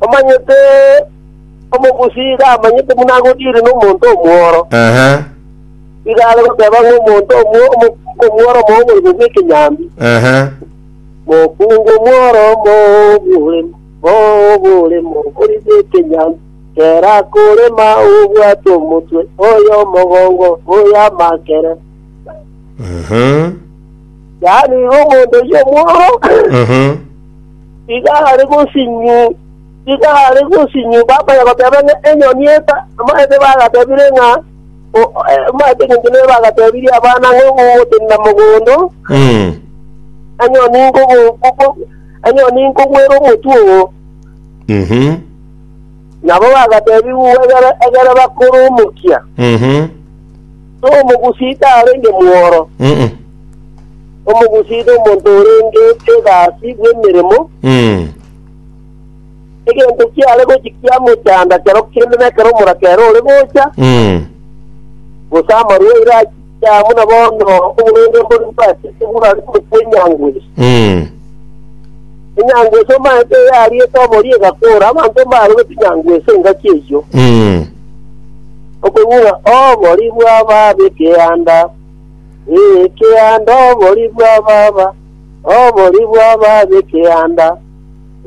Omanyete omogusi iga amanyete buna agodiire nomonto omworo, Ehe, iga are goteba ng'a omonto omwo- omo- omworo omobogoria bw'ekenyambi, ehe. Mokungu omworo omobore, mobore, mobori bw'ekenyambi, kera akorema obwate omotwe, oyo omogongo, oyo amakere. Mhm, Yaani iga omonto oyio omworo, mhm. Iga are gosinyu, iga are gosinyu, baba oye agoteba ng'a enyoni eta, amaete bagatebire ng'a o- o- eh, amaete engencho nere bagatebirie abana ng'a ogotenena mogondo, Mm. enyoni nkogo nkogo- enyoni nkogwera omotwe oo. Mhm. Nabo bagatebiwa egere egere bakoromokia, Mm-hmm. so omogusita arenge mworo. Mm-mm. Omogusii nomonto orenge egasi bw'emeremo, Mm. egento kiare gochia kiamochanda kero kende nekero omoraka ere ore gocha, Mm. gose amarwaire achicha buna bono oborwaire mbori bwachete burare korokwa enyangwesi. Mm. Enyangwesi omaete yariete obori egakora, abanto mbarogete enyangwesi engaki eyio, Mm. okogura obori bw'ababe ekeanda. Ekeanda obori bwa baba, obori bwa baba ekeanda,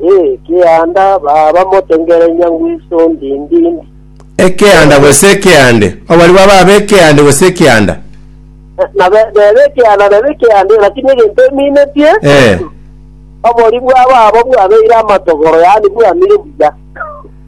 ekeanda baba motengerenya ngwiso ndindindi. ekeanda gose ekeande obori bwa baba ekeande gose ekeanda Na be- nebe ekeanda nebe ekeanda, lakini egento eminetie Eh, obori bwa baba bwabeire amatogoro, yaani bwamire buya.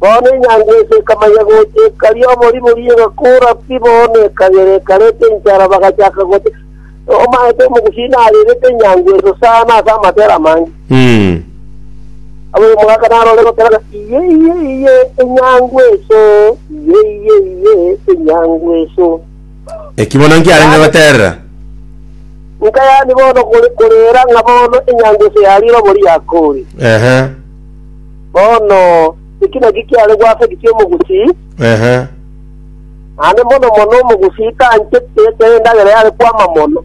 Bono enyango ense ekamanya gocha ekari oboribori, egakora pi bono ekagera ekareta enchara, bagachaka goteba, Nomaete omogusi narerete enyango enso sana ase amatera amange. Ab'omogaka narore gokera ng'a, Iye, iye, iye, enyango enso! Iye, iye, iye, enyango enso! Eki bono nkiarenge goterera. Nka yani bono kore korera ng'a bono enyango enso yarire obori yakore. Ehe. Bono, eki nakio kiare gwasagitia omogusii, Ehe. naende mono mono omogusii tanchete ekero endagera yare kwama mono.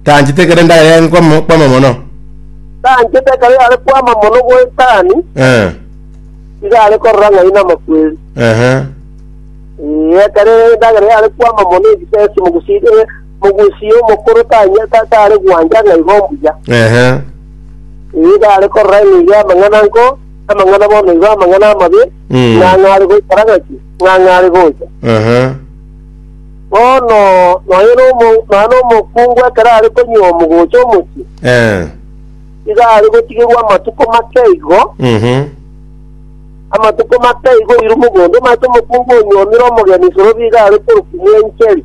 Tanchete ekero endagera yare kwama kwama mono. Tanchete ekero yare kwama mono goetani, Eh. iga are korora ng'ai namakweri. Ehe. Ee, ekero endagera yare kwama mono egisesi omogusii eh, Mogusia omokoro tanya- ta- tare gwancha ng'a igo mbuya. Ehe. Ee, tare korora ng'a igo amang'ana nko, amang'ana bono igo amang'ana amabe, Mm. ng'a ng'a are goikara ng'aki, ng'a ng'a are gocha. Ehe. Bono nonya nomo- nonya nomokungu ekero are konywa omogocha omochie, Eh. iga are gotigerwa amatuko make igo, Mhm. amatuko make igo oirwe mogondo, omanyete omokungu onyuomire omogeni isorobi iga are korukumia encheri.